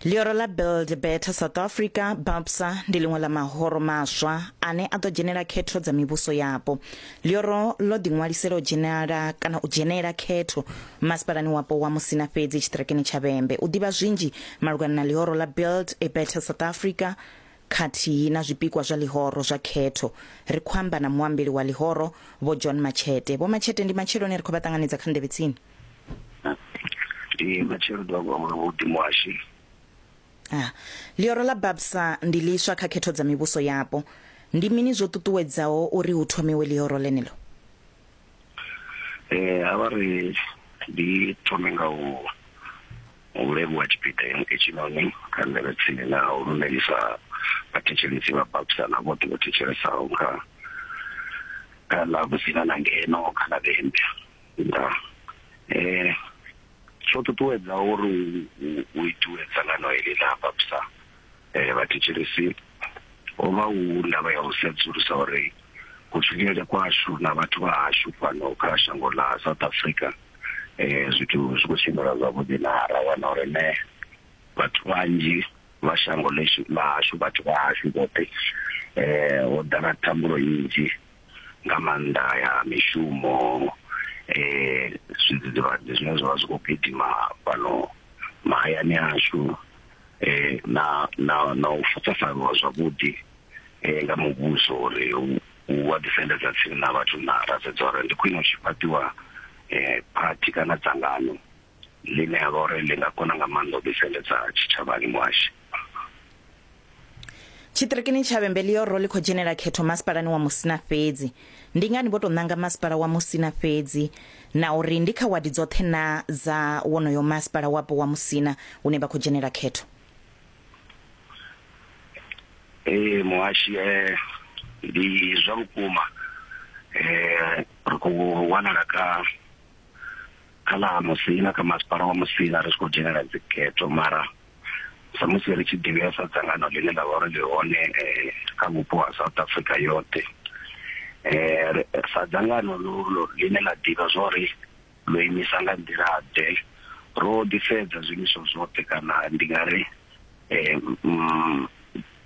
Ḽioro ḽa Build Better South Africa, BABSA, ndi ḽiṅwe ḽa mahoro maswa ane a ḓo dzhenela khetho dza mivhuso yapo. Ḽioro ḽo ḓiṅwalisela u dzhenela kana u dzhenela khetho masipalani wapo wa Musina fhedzi tshiṱirekeni tsha Vhembe. U ḓivha zwinzhi malugana na ḽioro ḽa Build a Better South Africa khathihi na zwipikwa zwa ḽihoro zwa khetho, ri khou amba na muambeli wa ḽihoro, Vho John Matshete. Vho Matshete, ndi matsheloni ri khou vha ṱanganedza kha Nḓevhetsini. ndi matshelo ḓuvha kwa muno vhuḓimo washu Ah, ḽioro ḽa babsa ndi ḽiswa kha khetho dza mivhuso yapo ndi mini zwo ṱuṱuwedzaho uri hu thomiwe ḽioro ḽeneḽo eh a vha ri ndi thome nga u u levhuwa tshipiḓa heno etshinoni kha ndele tsini na u lumelisa vhathetshelesi vha babsa na vhoṱhe vho thetshelesaho kha kha ḽa vhusina na ngeno kha ḽa vhembe nda eh tsho ṱuṱuwedza uri u itiwe dzangano heḽi ḽa vhapsa eh vhathetshelesi ho vha hu ndavha ya u sedzulusa uri kutshilele kwashu na vhathu vha hashu fhano kha shango ḽa South Africa eh zwithu zwi khou tshimbila zwavhuḓi na ra wana uri ne vhathu vhanzhi vha shango ḽa hashu vhathu vha hashu vhoṱhe eh ho ḓala thambulo nnzhi nga maanḓa ya mishumo eh zwidzidzivhadzi zwine zwavha zwi kho gidima fhano mahayani ashu eh na na na u fuṱafanyiwa zwavhuḓi eh nga muvhuso uri u wa ḓisendedza tsini na vhathu na ra sedza uri ndi khwine u tshi fhaṱiwa eh phathi kana dzangano. ḽine ha vha uri ḽi nga kona nga maanḓa u ḓiseledza tshitshavhani muhashi Tshiṱirikini tsha Vhembelioro ḽi khou dzhenela khetho masipalani wa Musina fhedzi. Ndi ngani vho tou ṋanga masipala wa Musina fhedzi na uri ndi kha wadi dzoṱhe na dza wonoyo masipala wapo wa Musina hune vha khou dzhenela khetho? Ee muhashi eh, ndi zwa vhukuma eh, ri khou wanala kha kha ḽa ha musina kha masipala wa musina ri tshi khou dzhenela dzikhetho mara samusi ri tshi ḓivhea sa dzangano ḽine ḽa vha uri ḽi hone eh, kha vhupo ha south africa yoṱhe eh, ri- sa dzangano lo- lo- ḽine ḽa ḓivha zwa uri ḽo imisa nga nḓila-ḓe ro ḓisedza zwiimiswa zwoṱhe kana ndi nga ri eh, mm,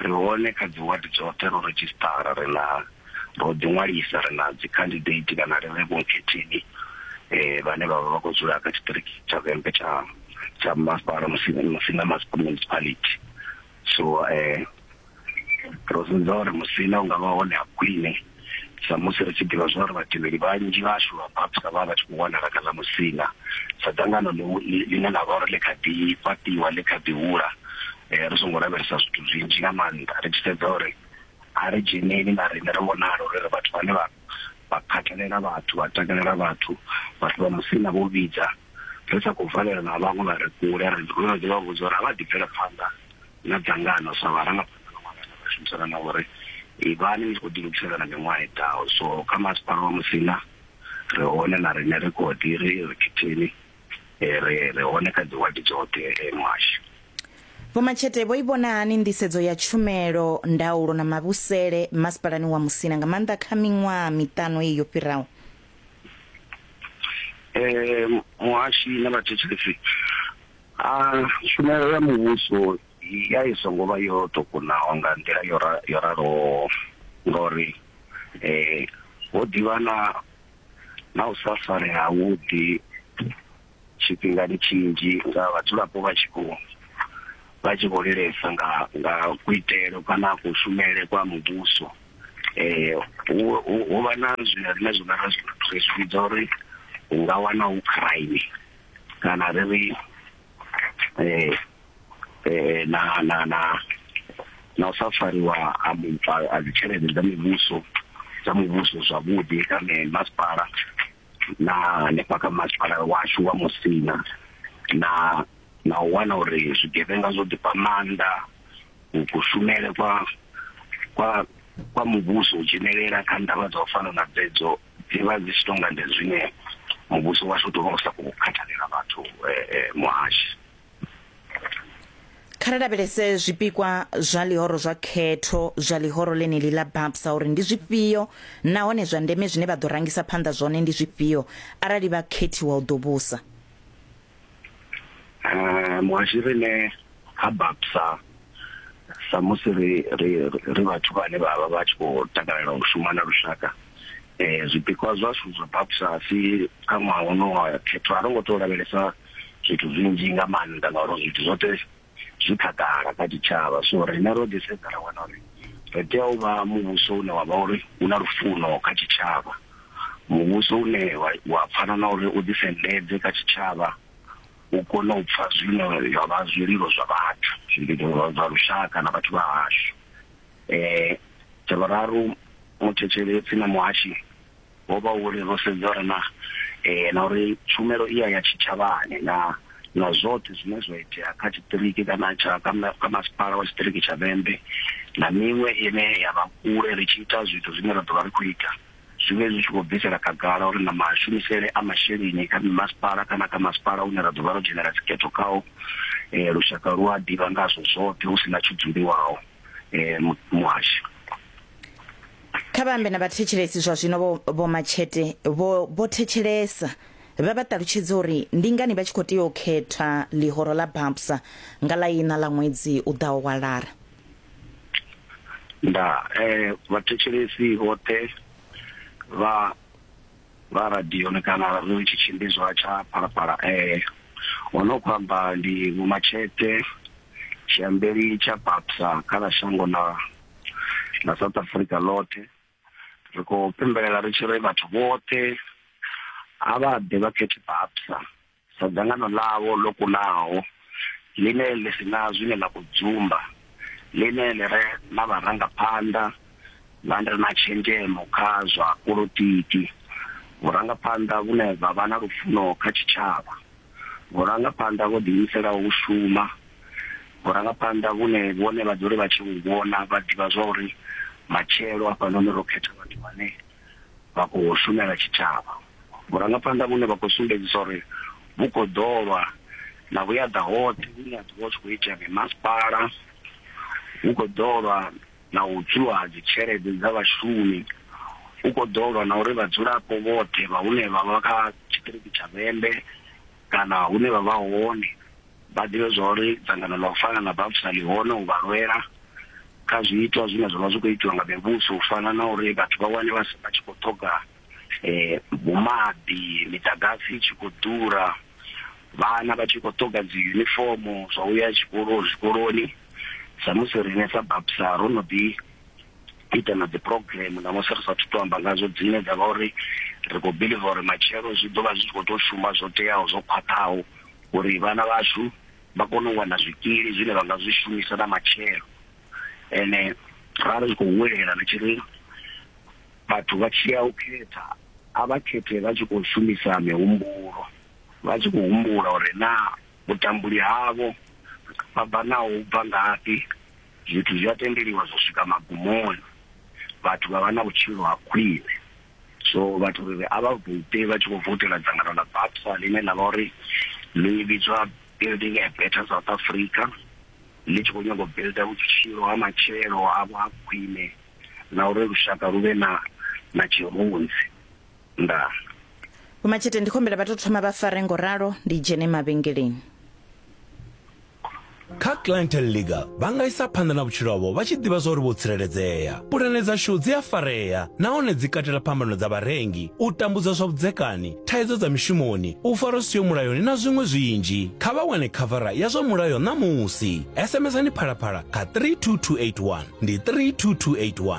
Ri hone kha dzi ward dzoṱhe, ro redzhisṱara, ri na, ro ḓi ṅwalisa, ri na dzi candidate kana ri vhe vhokhetheni vhane vha vha vha khou dzula kha tshiṱiriki tsha Vhembe tsha tsha masipala Musina Musina Municipality. So ro sedza uri Musina ungavha hone ha khwine. Samusi ri tshi ḓivha zwa uri vhatevheli vhanzhi vhashu vha Bapta vha vha vha tshi khou wanala kha ḽa Musina, sa dzangano ḽine ḽa vha uri ḽi kha ḓi fhaṱiwa, ḽi kha ḓi hula, ri songo lavhelesa zwithu zwinzhi nga maanḓa, ri tshi sedza uri a ri dzheneli na riṋe ri vhonale uri ri vhathu vhane vha vha khathalela vhathu, vha takalela vhathu, vhathu vha Musina vho vhidza, ri sa khou valelana na vhaṅwe vha re kule, ri no ḓi vha vhudza uri a vha ḓi bvele phanḓa na dzangano sa vharangaphanḓa. Vha shumisana na uri ivhani ni tshi khou ḓilugisela na miṅwaha i ḓaho. So kha masipala wa Musina ri hone na riṋe ri kho ḓi ri ri khetheni ri ri hone kha dzi wadi dzoṱhe muhasho. Vho Matshete vho i vhona hani nḓisedzo ya tshumelo, ndaulo na mavhusele masipalani wa Musina nga maanḓa kha miṅwaha miṱanu iyi yo fhiraho? Muhashi na vhathetshelesi, tshumelo ya muvhuso ya i songo vha yo tou kunaho nga nḓila yo ra- yo raloho ngauri eh ho ḓivha na na u sa farea havhuḓi tshifhingani tshinzhi nga vhadzulapo vha tshi khou vha tshi khou lilesa nga nga kuitele kana kushumele kwa muvhuso eh hu hu- hu vha na zwine riṋe zwine ra zwi ri zwi vhidza uri hu nga wana hu crime kana ri ri eh eh na na na na u sa fariwa a muthu a dzi tshelede dza muvhuso dza muvhuso zwavhuḓi kana masipala na hanefha kha masipala washu wa musina na na u wana uri zwigevhenga zwo ḓifha maanḓa kushumele kwa kwa kwa muvhuso u dzhenelela kha ndavha dza u fana na dzedzo dzi vha dzi tshi tou nga ndi zwine muvhuso washu u tou vha u sa khou khathalela vhathu muhashi. Kha ri lavhelese zwipikwa zwa ḽihoro zwa khetho zwa ḽihoro ḽeneḽi ḽa BAPSA uri ndi zwifhio nahone zwa ndeme zwine vha ḓo rangisa phanḓa zwone ndi zwifhio arali vha khethiwa u ḓo vhusa. eh muhashi rine ha bapsa sa musi ri ri ri vhathu vhane vha vha vha tshi khou takalela u shuma na lushaka eh zwipikwa zwashu zwa bapsa si kha ṅwaha wono wa khetho a ro ngo tou lavhelesa zwithu zwinzhi nga maanḓa ngauri zwithu zwoṱhe zwi khagala kha tshitshavha so riṋe ro ḓi sedza ra wana uri ri tea u vha muvhuso une wa vha uri u na lufuno kha tshitshavha muvhuso une wa pfana na uri u ḓisendedze kha tshitshavha u kone u pfha zwine zwa vha zwililo zwa vhathu zwililo zwa lushaka na vhathu vha hashu um tsha vhuraru muthetshelesi na muhashi ho vha uri ro sedza uri na eh, na uri tshumelo iya ya tshitshavhani na na zwoṱhe zwine zwa itea kha tshiṱiriki kana tsha kha masipala wa tshiṱiriki tsha vhembe na miṅwe ine ya vha kule ri tshi ita zwithu zwine ra ḓo vha ri khou ita zwi vhe zwi tshi khou bvisela khagala uri na mashumisele a masheleni kha mimasipala kana kha masipala une ra ḓo vha ro dzhenela dzikhetho khao um eh, lushaka lu a ḓivha ngazwo zwoṱhe hu si na tshudzuliwaho um eh, muhasho kha vha ambe na vhathetshelesi zwa zwino vho vho matshete vho vho thetshelesa vha vha ṱalutshedza uri ndi ngani vha tshi khou tea u khetha ḽihoro ḽa babsa nga ḽa ina ḽa ṅwedzi u ḓaho wa lara nda eh vhathetshelesi vhoṱhe vha vha radio ni kana radio tshi tshimbidzwa tsha phalaphala eh ono khou amba ndi vho matshete tshiambeli tsha babsa kha ḽa shango na na south africa ḽoṱhe ri khou pembelela ri tshi ri vhathu vhoṱhe a vha ḓe vha khethe babsa sa dzangano ḽavho ḽo kunaho ḽine ḽi si na zwine ḽa khou dzumba ḽine ḽi re na vharangaphanḓa vha re na tshenzhemo kha zwa politiki vhurangaphanḓa vhune vha vha na lufuno kha tshitshavha vhurangaphanḓa vho ḓiimiselaho u shuma vhurangaphanḓa vhune vhone vha dzule vha tshi vhu vhona vha ḓivha zwa uri matshelo hafhanoni ro khetha vhathu vhane vha khou shumela tshitshavha vhurangaphanḓa vhune vha khou sumbedzisa uri vhu khou ḓolwa na vhuyaḓa hoṱhe vhune ha ḓivha hu tshi khou itea mimasipala hu khou ḓolwa na u tswiwa ha dzitshelede dza vhashumi hu khou ḓolwa na uri vhadzulapo vhoṱhe vha hune vha vha kha tshiṱiriki tsha vhembe kana hune vha vha hone vha ḓivhe zwa uri dzangano ḽa u fana na BAPFSA ḽi hone u vha lwela kha zwiitwa zwine zwa vha zwi khou itiwa nga mivhuso u fana na uri vhathu vha wane vha vha tshi khou ṱhoga um maḓi miḓagasi i tshi khou ḓura vhana vha tshi khou ṱhoga dzi yunifomo zwa uya tshikolo zwikoloni samusi riṋe sa BAPFSA ro no ḓi u ita na dzi program na musi ri sathu to amba ngazwo dzine dza vha uri ri khou believe uri matshelo zwi ḓo vha zwi tshi khou to shuma zwo teaho zwo khwaṱhaho uri vhana vhashu vha kone u wana zwikili zwine vha nga zwi shumisa na matshelo ene ra ri khou huwelela ri tshi ri vhathu vha tshi ya u khetha a vha khethe vha tshi khou shumisa mihumbulo vha tshi khou humbula uri naa Vhutambuli havho vha bva naho hu bva ngafhi, zwithu zwi a tendeliwa zwa swika magumoni, vhathu vha vha na vhutshilo ha khwine. So vhathu ri ri a vha vote vha tshi khou voutela dzangano ḽa BAPSA ḽine ḽa vha uri ḽi vhidzwa Building a Better South Africa, ḽi tshi khou nyaga u builder vhutshilo ha matshelo havho ha khwine na uri lushaka lu vhe na na tshirunzi. Ndaa. Vho Matshete ndi khombela vha to thoma vha fare ngo ralo ndi dzhene mavhengeleni. Kha Clientele Legal vha nga isa phanḓa na vhutshilo havho vha tshi ḓivha zwa uri vho tsireledzea. Pulane dzashu dzi a farea nahone dzi katela phambano dza vharengi, u tambudzwa zwa vhudzekani, thaidzo dza mishumoni, u farwa zwi siho mulayoni na zwiṅwe zwinzhi. Kha vha wane khavara ya zwa mulayo ṋamusi. SMS-ani Phalaphala kha 32281. Ndi 32281.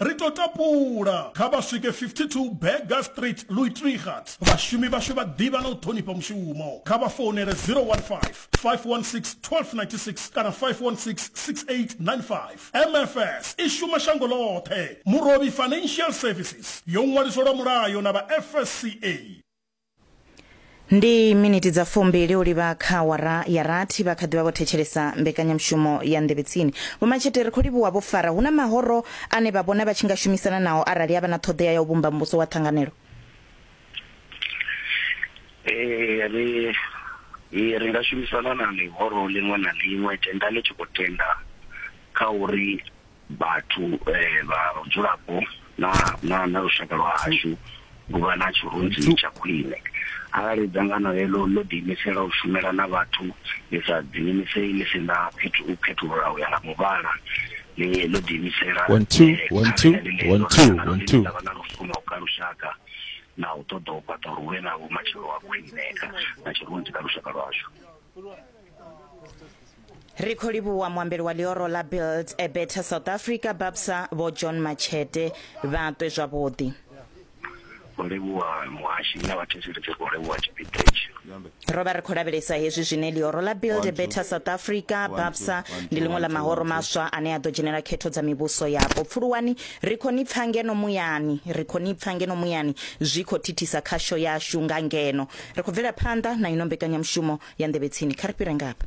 Ri tou tapula, kha vha swike 52 Burger Street, Luitrigat. Vhashumi vhashu vha ḓivha na u ṱhonifha mushumo. Kha vha founele 015 516 1296 kana 516 6895. MFS i shuma shango ḽoṱhe. Murovhi Financial Services yo ṅwaliswa lwa mulayo na vha FSCA. ndi miniti dza fumbili u livha kha wara ya rathi vha kha ḓivha vho thetshelesa mbekanyamushumo ya nḓevhetsini vhomatshete ri khou livhuwa vho fara hu na mahoro ane vha vhona vha tshi nga shumisana nao arali havha na ṱhoḓea ya u vhumba muvhuso wa ṱhanganelo ee ri ee, ri nga shumisana na ḽihoro ḽiṅwe na ḽiṅwe tenda ḽi tshi khou tenda kha uri vhathu vha vhudzulapo na na na lushaka lwa hashu u vha na tshirunzi tsha khwine arali dzangano heḽo ḽo ḓiimisela u shumela na vhathu ḽi sa ḓiimiseli ḽi si na fhethu u khethulula u ya nga muvhala ḽi ḽo ḓiimisela One, two, eh, one, two, kha ḽeneḽo one, two, dzangano one, ḽine two. ḽa vha na lufuno kha lushaka na u ṱoḓa u fhaṱa uri hu vhe na vhumatshelo ha khwine kha na tshirunzi kha lushaka lwashu ri khou livhuwa muambeli wa ḽioro ḽa build a better south africa babsa vho john machete vha ṱwe zwavhuḓi khou livhuwa muhashi na vhathetshelesi ri khou livhuwa tshipiḓa itshi ro vha ri khou lavhelesa hezwi zwine ḽioro ḽa build a better south africa babsa ndi ḽiṅwe ḽa mahoro maswa ane a ḓo dzhenela khetho dza mivhuso yapo pfuluwani ri khou ni pfa ngeno muyani ri khou ni pfa ngeno muyani zwi khou thithisa khasho yashu nga ngeno Ri khou bvela phanḓa na ino mbekanyamushumo ya Nḓevhetsini. Kha ri fhire ngafha.